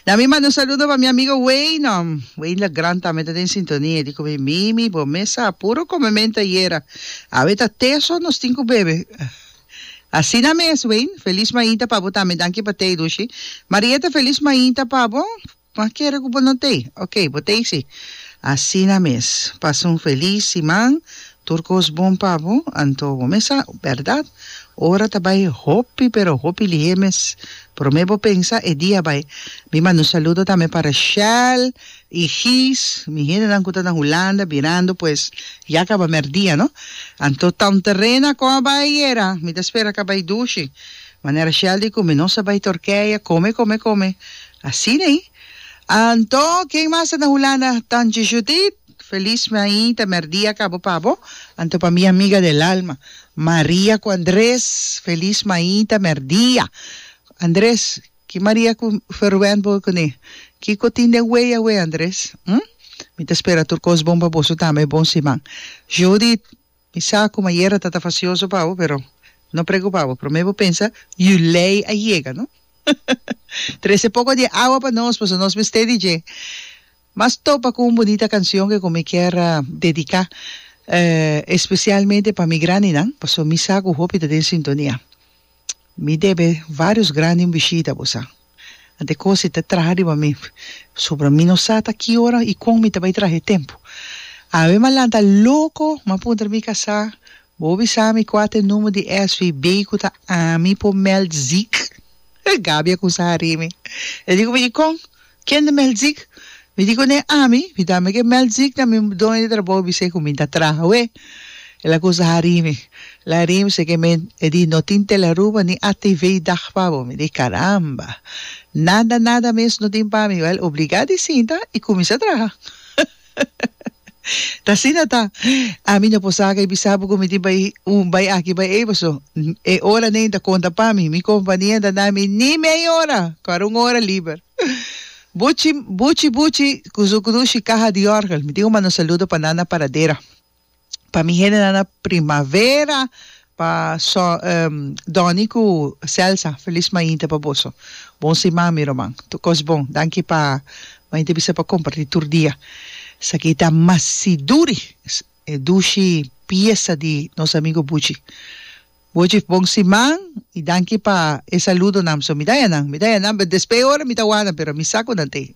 Dami manda un saludo pa mi amigo Weynon, Weyne Legrand tambe ta den sintonia, e di cu mi, Mimi, bo mes a puro come mente ayera, awe ta te so nos tin cu bebe. Asina mes Weyne, feliz mainta pa bo tambe, danki pa tey Lushi. Marieta feliz mainta pa bo, ma kere cu bo no tey, ok, bo tey si. Asina mes, pasa un feliz siman. Tur cos bon pa bo, anto bo mes a berdad, ora ta bay hopi pero hopi lihé mes. Prome bo pensa e dia bay. Mi manda un saludo tambe pa Rashel y Gys, mi hendenan cu ta na Hulanda birando pues ya a caba merdia no. Anto Town Terrena con a bay ayera? Mi ta spera ca bay dushi. Manera Rashel di cu mi no sa bay Turkije, come come come. Asina ey. Anto ken mas ta na Hulanda? Tantje Judith. Feliz mi ahi ta merdia cabo pa bo. Anto pa mi amiga del alma Maria cu Andres feliz mi ahi ta merdia Andres ki Maria cu Ferwend bo cune kico tin den wei awe Andres hm mi ta spera tur cos bon pa boso tambe bon siman Judith Mi sa kuma yera ta ta fasioso pa bo, pero no preocupa bo, prome bo pensa yu lei a yega no. Trese poco di e awa pa nos paso nos mester di dje. Mas topa cu un bunita cancion ke cu mi kier dedica especialmente pa mi grandinan, paso mi sa cu hopi ta den sintonia. Mi debe varios grandi un bishita bosa. Ante cosi ta traha riba mi. Pasobra mi no sa ta ki ora y con mi ta bay traha e tempo. Awe m'a lanta loco, m'a puntra di mi casa, Bo bisa mi cua ta e number di SVB cu ta ami por meld ziek? Gaby a cusa a rimi. E dico mi, y con? Ken de Melkziek? Mi di kuné, Ami, mi ta meken Melkziek na mi doño di trabou i bis'é ku mi ta traha awé. El a kusa harí mi. El a harí mi seken mi e di no tin Telearuba ni ATV i dag pa bo. Mi di, Karamba! Nada, nada mes no tin pa mi. Wèl, obligá di sinta i kuminsá traha. Ta asina ta. Ami no por saca y bisa bo cu mi tin bay un, bay aki, bay ey paso e ora nen ta conta pa mi. Mi compania ta na mi ni mey ora cu a un ora liber. Buchi, buchi, buchi cu su crushi caha di orgel. Mi tin un mano saludo pa nan na paradera. pa mi hende nan a primavera pa so um Donny cu Celsa feliz mainta pa boso bon siman mi roman tur cos bon danki pa mainta bisa pa comparti tur dia esaki ta masi duri e dushi piesa di nos amigo Buchi Buchi bon siman y danki pa e saludonan so mi daya nan mi daya nan but despe e ora mi ta wanda pero mi sa cu nan t'e.